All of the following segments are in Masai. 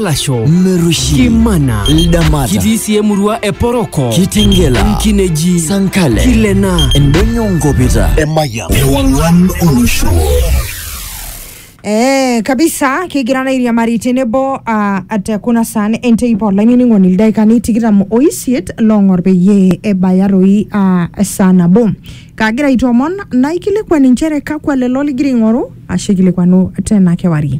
Lasho, Merushi, Kimana, Ldamata, kitii sii emurua e Poroko, Kitingela, Nkineji, Sankale, Kilena, Endonyo Nkopita, Emayian, Ewang'an Olosho. Eh, kabisa kigira nairiamari tenebo uh, at kuna saan enteipa olainining'oni ildaikani tikitam oisiet loong'or peyie ebaya toi uh, esaa nabo kaagira aitoomon naikilikuan inchere kakwa lelo ligira aing'oru ashu aikilikuanu tena kewarie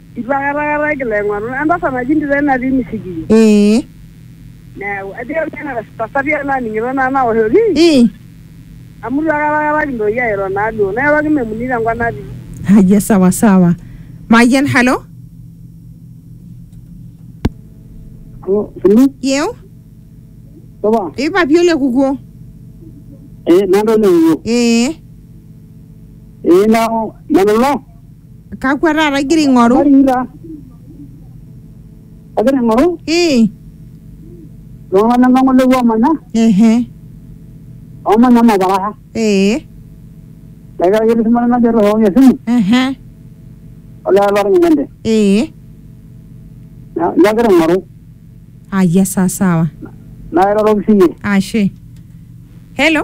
Eitu akata akata kilo aing'oru. Entasat naji Ndira natii Misigiri. Ee. Neeku ajo nanu ena tasati ai naning'ito naa naoshoki. Ii. Amu eitu akata akata kintoki airo naa duo. Nairoroki Memuni tenkop natii. Haya sawa sawa. Mayian halo. Halo, Sulu, Yeu. supa? Ee papi ole kukuo. Eh, nanu olewuo. Ee. Eh, nanu, nanu ilo? kakwa taata igira aing'oru Habari taa. Agira aing'oru ii iltung'ana ng'ole oomanya ehe oomanya Mabaraka. ee Negira ake etii shumata najo airriwaki esimu ehe olee olorny nende. ee Na- Nagira aing'oru ayia saa sawa nairoroki siyie. ashe hello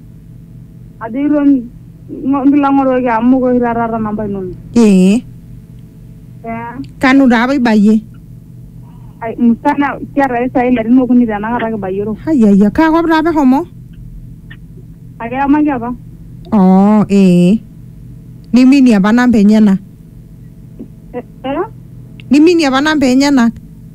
ajo iton ngo- nkilang'oroki amu mokure oshi taata aata namba inono ee Eh, kanu taa apa ibayie ai- musana kiata ake sai ilarin okuni tenakata kibayioro ayayia kaa kop taa apa ehomo ake yamaki apa oo ee niminie apa namba enyena Eh, eh? niminie apa namba enyenak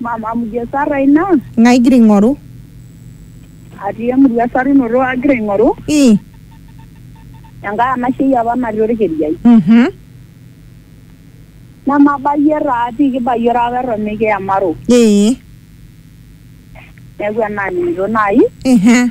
Mama, amu ijo esarra ina. Ng'ae igira aing'oru? Atii emurua esarunoto agira aing'oru. Ii. Enkae anashei apa natii olkiriai. Mhm. Nemabayie taa pii kibayie olapa eton mikiyamaro. Ee. Neaku enaaning'ito naaji. Ehe.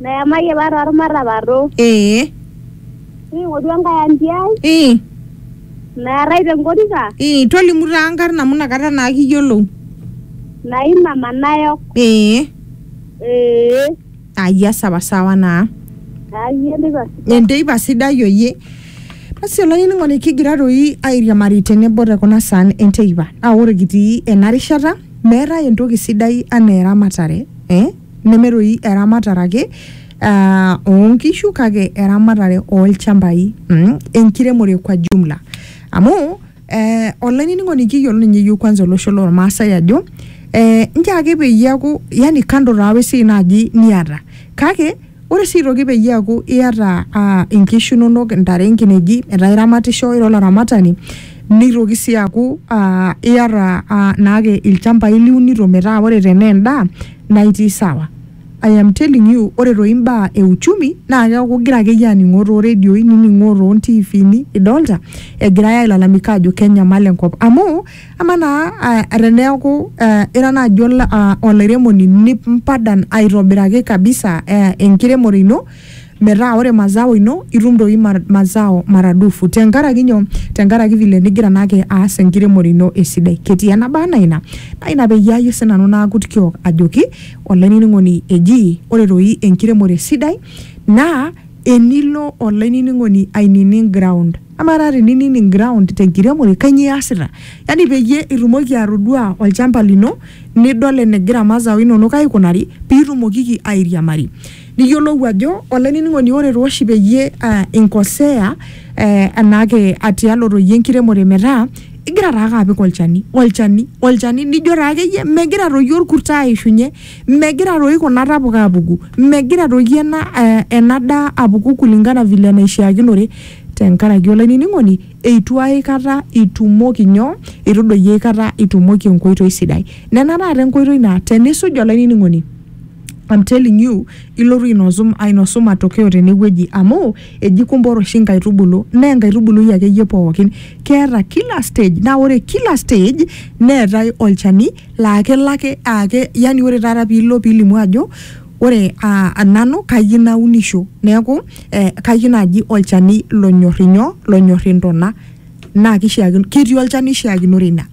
Nayamayie apa tormatapato. Ee. Ning'oru enkae anti ai. Ii. Naarrai tenkorika. Ii. Tolimu taa nkarn amu nakata naa kiyiolou. Naima manayok. Ee. Ee. Ayia sawa sawa naa. Ayia enteipa sidai. Enteipa sidai oyie. Basi olainining'oni kigira doi airiamari tenebo te kuna saan enteipa. Naa ore kitii ena rishata meetae entoki sidai anaa eramatare eh. neme doi eramatare ake uh, oonkishu kake eramatare olchambai mm, enkiremore kwa jumla amu eh, olainining'oni kiyiolo ninye yiok kwanza olosho lormaasai ajo eh, nche ake peyie eaku yani kando taa wesiai naaji niata kake ore sii aitoki peyie eaku iata uh, inkishu inonok intare inkineji metaa iramatisho ira olaramatani Neitoki sii aaku aa iata aa naake ilchambai liunito metaa ore tenaa endaa naa itii sawa. I am telling you ore toi imbaa e uchumi naa keeku igira akeyie aning'oo too redioi, nining'oo too ntiifini idolta egirai ailalamika aajo kenyamal enkop. Amu amaa naa aa teneeku aa ira naaji ol aa olairemoni nimpadan aitobiraki kabisa aa enkiremore ino, metaa ore mazao ino itum doi mazao maradufu tenkaraki nyoo tenkaraki vile nigira naake aas enkiremore ino esidai ketii enaba anaa ina naa ina peyie ayie sinanu naakut kiok ajoki olainining'oni eji ore doi enkiremore sidai naa enilo olainining'oni ainining ground amaa taa teninining ground tenkiremore kanyio iasita yani peyie itumoki atodua olchamba lino nidol enegira mazao inonok aikunari pitumokiki airiamari. Niyiolou ajo, olainining'oni ore taa oshi peyie eh, inkosea eh, enaake atialoto iyie enkiremore metaa igira taake apik olchani olchani olchani nijo taa akeyie megira toi orkurt aishunye megira toi kuna tapuka apuku megira toi ena eh, ena daa apuku kulingana vile enaishiakinore tenkaraki olainining'oni eitu aikata itumoki nyoo itu doi aikata itumoki enkoitoi sidai nena taata enkoitoi naa tenisuj olainining'oni. I'm telling you ilotu ainosu, ainosu matokeo tenewueji amu eji kumbor oshi nkaitubulu naa enkaitubului akeyie pookin keeta kila stage naa ore kila stage neetae olchani laa kelo ake aake yani ore taata piilo pilimu ajo ore uh, nanu kayieu naunisho neeku eh, kayieu naaji olchani lonyorr inyoo lonyorr intona naa kishiakino ketii olchani oishiakinore ina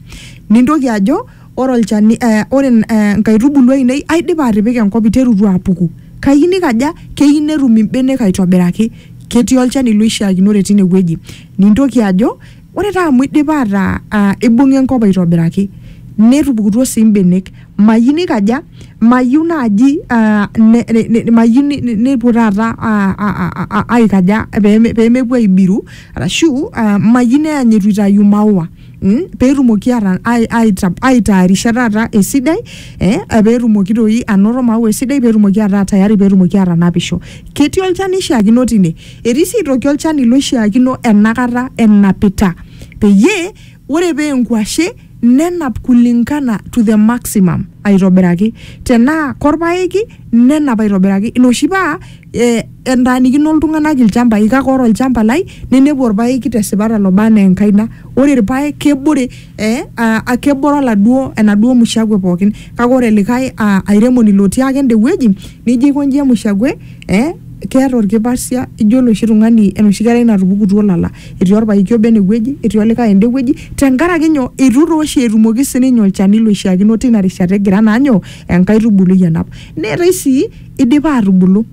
nintoki ajo ore olchani eh, ore eh, nkaitubulu ainei aidipa atipika enkop iterutua apuku kayieu nikaja keyieu netum imbenek aitobiraki ketii olchani loishiakinore tine wueji nintoki ajo ore taa amu idipa ataa ah, ibung'a enkop aitobiraki netupukutuo sii imbenek mayieu nikaja mayieu naaji ah, ne- ne- ne- mayieu ni- ni- nepuo taata ah, ah, ah, ah, aikaja peme- pemepuo aibiru arashu ah, mayieu neany etu itayu maua Mm, peetumoki ata- ai- aita- aitaarisha taata esidai eh, peetumoki toi anoto maua esidai peetumoki ataa tayari peetumoki atanapisho ketii olchani oishiakino tine etii sii aitoki olchani loishiakino enakata enapita peyie ore pee enkuashe nenap kulingana to the maximum aitobiraki tenaa korpaeki nenap aitobiraki ina oshi paa eh, entaanikino iltung'anak ilchambai kake ore olchamba lai ninepu orpaeki tesipata loba anaa enkaina ore irpaek kebore eh, uh, kebore oladuo enaduo mushakwe pookin kake ore likae uh, airemoni lotii ake ende wueji nijo aikonji emushakwe eh, keeta orkipasia ijo oloshi tung'ani enoshi kerai natupukutuo lala etii orpaeki obo enewueji etii olikae ende wueji tenkaraki nyoo itu tooshi etumoki sininye olchani loishiakino tina rishata egira naa nyoo enkaitubului anap neetae sii idipa atubulu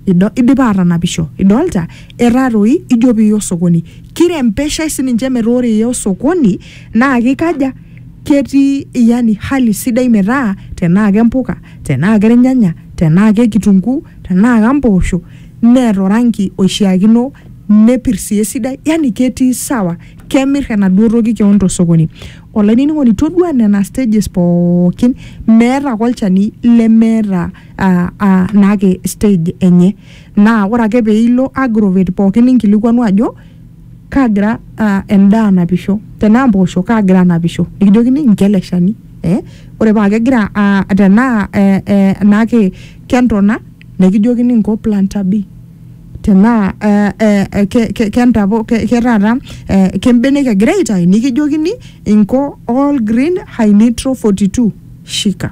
Ido, idipa aatanapisho. Idolta? Etaa toi ijo piiya osokoni. Kirembeshae sininche metaa ore iya osokoni naa kikaja, ketii yani hali sidai metaa tenaa kempuka, tenaa kelnyanya, tenaa kekitunguu, tenaa kampoosho neeta oranki oishiakino nepirr sii esidai yani ketii sawa. Kemirr enaduo toki kewon tosokoni. Olainining'oni toduaa nena stages pookin meeta ake olchani lemeeta. ah, ah, naake stage enye naa ore ake peilo agrovet pookin ninkilikuanu ajo kaagira ah, endaa anapisho tenaa mpoosho kaagira anapisho nikijokini incho ele shani eh? ore paa kegira ah, tenaa eh, eh, naake kentona nikijokini inko planta b tenaa eh, eh, eh, ke- ke- kentapo ke- ke taata eh, kembenek egira aitayu nikijokini inko all green high nitro 42 shika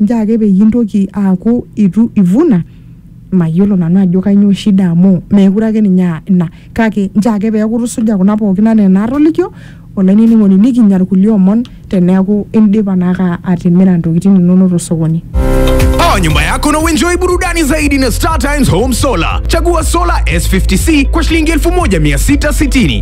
Njoo ake peyie intoki aaku eitu ivuna, mayiolo nanu ajo kainyoo shida amu meekure ake ninye aa ina kake njoo ake peeku itusuja kuna pookin anaa enaatolikio olainining'oni nikinya ilkulie omon teneeku indipa naake atimira ntokitin inonok tosokoni. Power nyumba yako na uenjoy burudani zaidi na Star Times Home Solar. Chagua solar S50C kwa shilingi 1660.